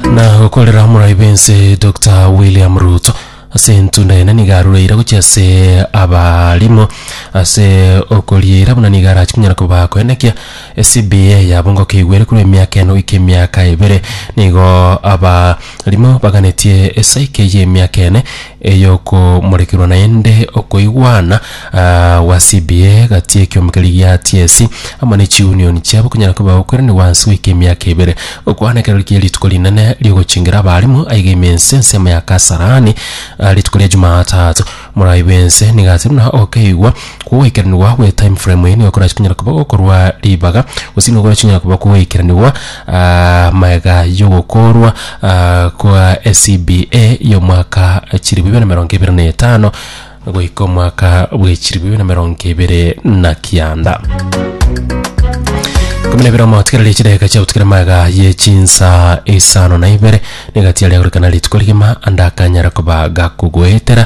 Na gokorera omorai b'ense Doctor William Ruto ase entunda ene niga arureire gochia ase abarimo ase okorieira buna niga arachi kunyara koba koenekia CBA yabo ngokeigwere korwa emiaka eno goika emiaka ebere nigo abarimo baganetie esaike y'emiaka ene Eyokomorekerwa naende okoigwana gwasibie gati ekiombe keria gia Tiesi amo ne chiunioni chiabo konyara koba gokweranigwa ase goika emiaka ebere. Okwana ekero riria rituko rinene riogochingera abaalimu, aiga ime ense ensemo ya Kasarani rituko ria Jumatatu. Morai bw'ense nigo ase buna okeigwa Gogoikeranigwa gwe time frame eye nigo korase konyara koba gokorwa ribaga, gose nigo korase konyara koba gogoikeranigwa aa magega y'ogokorwa aa kwa SCBA ya omwaka chilifu ibere na emerongo ebere na etano goika omwaka bwe chilifu ibere na emerongo ebere na kianda. Ikomi na ibere omotigereria chidageka chiagotigera magega ye chinsa isano na ibere, nigo egatiaria gorekana rituko rigima ande akanyare koba gakogoetera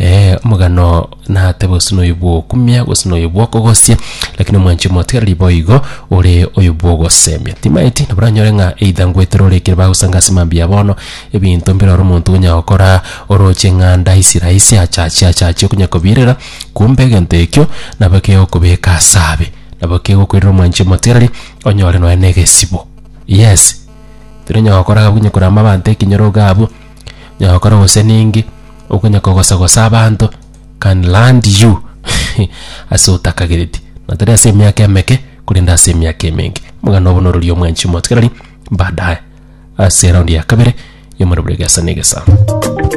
Ee, omogano natebe gose noyo bw'okumia gose noyo bw'okogosia, lakini omwanchi omotigareri boigo ore oyo bw'ogosemia. Timaeti nabo oranyore ng'a either ngwetera ore ekero bagosanga ase mambia bono, ebinto mbire ore omonto onya gokora oroche eng'anda aisi raisi achache achache okonya kobirera, kumbe egento ekio nabo kegokobeka ase abe. Nabo kegokoirera omwanchi omotigareri onyore nonya na egesibo. Yes, tiri onya gokora gabunye korama abanto ekenyoro iga abwo. Onyala gokora gose ninki, okonya kogosa gosa abanto can land you ase otakagereti, na tari ase emiaka emeke, korende ase emiaka emenge. Omoganda obo norori omwanchi omotigareri baadaye ase eraundi ya kabere ya omorero bwa egesa na egesa.